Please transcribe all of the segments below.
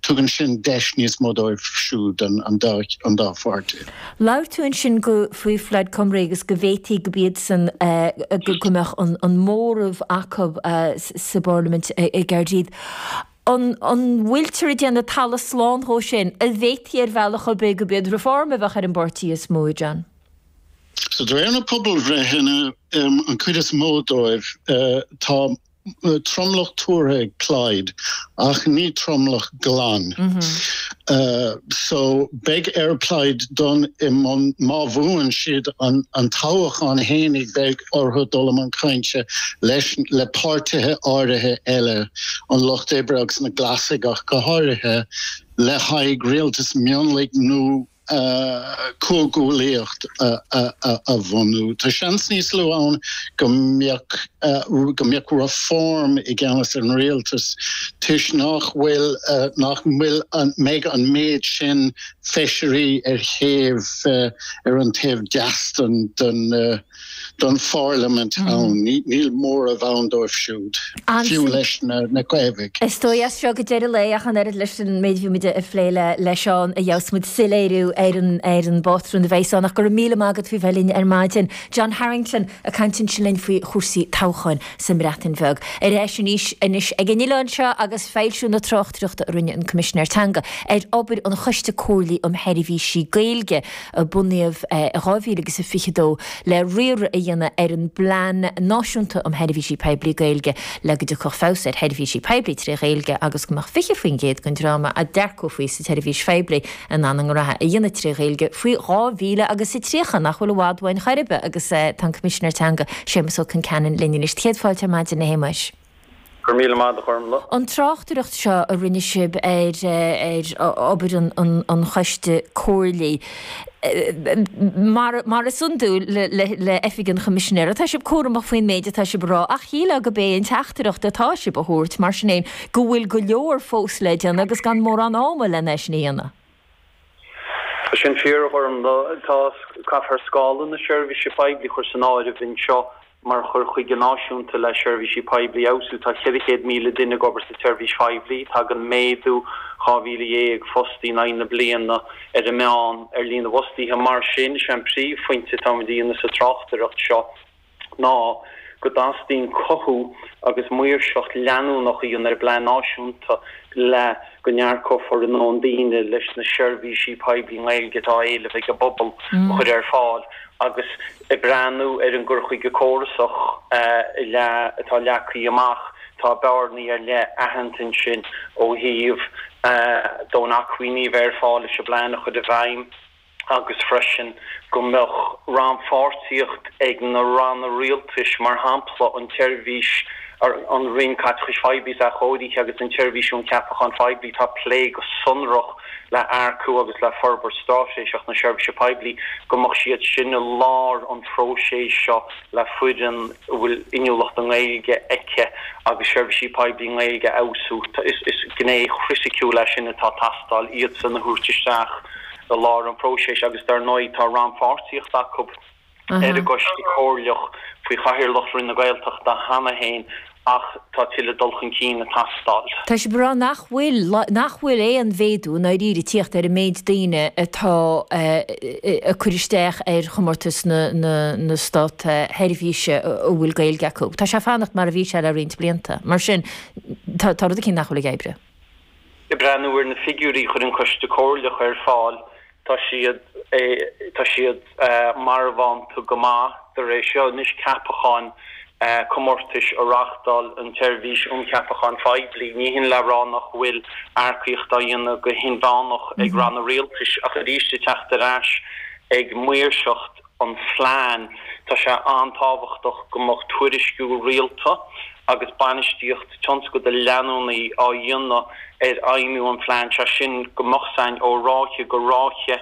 Tugann sin deis níos mó dóibh siúd, an dá pháirtí. Labhair tú ansin go faoi Plaid Cymru agus go bhféadfaí go b'iadsan, go mbeadh an móramh acu sa bparlaimint i gCaerdydd. An bhfuiltear ag déanamh talamh slán dhó sin? An bhféadfaí ar bhealach ar bith go b'iad Reform a bheadh ar an bpáirtí is mó, John? De réir na bpobalbhreitheanna, an cuid is mó dóibh, tá tromlach tuartha ag Plaid ach ní tromlach glan. So beidh ar Plaid dul i mbun, má bhuann siad an toghachán féin, beidh orthu dul i mbun cainte leis, le páirtithe áirithe eile, an Lucht Oibre agus na Glasaigh ach go háirithe, le haghaidh rialtas mionlaigh nó comhghuaillíocht a bhunú. Tá seans níos lú ann go mbeadh go mbeadh Reform i gceannas ar an rialtas toisc nach bhfuil nach bhfuil nach mbeidh an méid sin feisirí ar thaobh ar an taobh deis den don Pharlaimint ann, níl móramh ann dóibh siúd, fiú leis na Coimeádaigh. Is dóigh as seo go deireadh lae, ach an oiread leis an méid a bhí muid ag plé leis ann, a gheobhas muid soiléiriú ar an bpátrún a bheas ann. Ach go raibh míle maith agat faoi bheith linn ar maidin. John Harrington ag caint ansin linn faoi chúrsaí toghcháin sa mBreatain Bheag. Ar ais arís anois ag an oileán seo agus foilsiú na tráchtaireachta a rinne an Coimisinéir Teanga ar obair an Choiste Comhairligh um Sheirbhísí Gaeilge. a bunaíodh i 2022 le riar a dhéanamh ar an bPlean Náisiúnta um Sheirbhísí Poiblí Gaeilge le go dtiocfadh feabhas ar sheirbhísí poiblí tré Ghaeilge agus go mbeadh 20% den dream a d'earcófaí sa tseirbhís phoiblí in ann a ngraithe a dhéanamh tré Ghaeilge faoi dhá mhíle agus a tríocha, nach bhfuil i bhfad uainn chor ar bith agus tá an Coimisinéir Teanga, Séamas Ó Concheanainn linn anois. Céad fáilte ar maidin a Shéamais. Go raibh míle maith agat a Ghormfhlaith. An tráchtaireacht seo a rinne sibh ar obair an choiste comhairligh, mar is iondúil le Oifig an Choimisinéara, tá sibh cúramach faoin méid atá sibh a rá ach shílfeá go b'é an teachtaireacht atá sibh a thabhairt, mar sin féin, go bhfuil go leor fós le déanamh agus gan mórán ama lena é sin a dhéanamh. Tá sin fíor, a Ghormfhlaith. Tá, caithfear scála na seirbhíse poiblí a chur san áireamh anseo mar chur chuige náisiúnta le seirbhísí poiblí a fheabhsú. Tá 400,000 duine ag obair sa tseirbhís phoiblí. Tagann méadú 12,000 fostaí in aghaidh na bliana, ar an meán, ar líon na bhfostaíthe. Mar sin, is é an príomhphointe atáimid a dhéanamh sa tráchtaireacht seo, ná go dteastaíonn cothú agus maoirseacht leanúnach a dhéanamh ar an bplean náisiúnta le go n-earcófar a ndóthain daoine leis na seirbhísí poiblí i nGaeilge atá á éileamh ag an bpobal a chur ar fáil agus ag breathnú ar an gcur chuige córasach atá leagtha amach. Tá bearnaí ar leith aitheanta ansin ó thaobh dóthain acmhainní a bheith ar fáil leis an bplean a chur i bhfeidhm. agus freisin go mbeadh rannpháirtíocht ag na ranna rialtais, mar shampla an tSeirbhís, an Roinn Caiteachais Phoiblí is Athchóirithe agus an tSeirbhís um Cheapacháin Phoiblí atá ag plé go sonrach le hearcú agus le forbairt straitéiseach na Seirbhíse Poiblí go mbeadh siad sin i lár an phróisis seo le foireann a bhfuil inniúlacht i nGaeilge aici agus seirbhísí poiblí nGaeilge a fheabhsú. Is gné chriticiúil é sin atá ag teastáil, iadsan a thabhairt isteach. i lár an phróiseas agus dar ndóigh tá rannpháirtíocht acu ar an gCoiste Comhairleach faoi chathaoirleacht Roinn na Gaeltachta cheana féin ach tá tuilleadh dul chun cinn ag teastáil. Tá siad ag rá nach bhfuil nach bhfuil aon mhéadú i ndáiríre ag tíocht ar an méid daoine atá ag cur isteach ar chomórtas na Státseirbhíse a bhfuil Gaeilge acu. Tá sé ag fanacht mar a bhí sé le roinnt blianta. Mar sin tá rud eicínt nach bhfuil ag oibriú. Ag breathnú ar na figiúirí a chuir an Coiste Comhairleach ar fáil, tá siad tá siad marbhánta go maith de réir seo anois ceapacháin comórtais a reáchtáil an tSeirbhís um Cheapacháin Phoiblí. Ní hin le rá nach bhfuil earcaíocht á dhéanamh go hinmheánach ag Ranna Rialtais ach arís ag teacht ar ais ag maoirseacht. an phlean, tá sé an-tábhachtach go mbeadh tuairisciú rialta agus bainistíocht tionscadail leanúnaí á dhéanamh ar fheidhmiú an phlean, sé sin go mbeadh a fhios againn ó ráithe go ráithe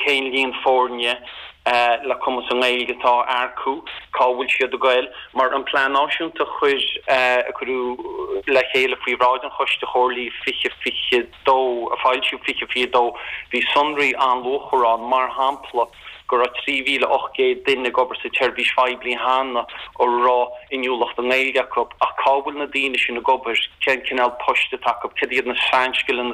cén líon foirne le cumas i nGaeilge atá á earcú, cá bhfuil siad ag goil. Mar an Plean Náisiúnta a cuireadh le chéile faoi bhráid an Choiste Chomhairligh 2020, dó, a foilsíodh 2022, bhí sonraí an-luachmhara ann, mar shampla go raibh 3,800 duine ag obair sa tseirbhís phoiblí cheana a raibh inniúlacht i nGaeilge acu. Ach cá bhfuil na daoine sin ag obair? Cén cineál poist atá acu? Cad iad na sainscileanna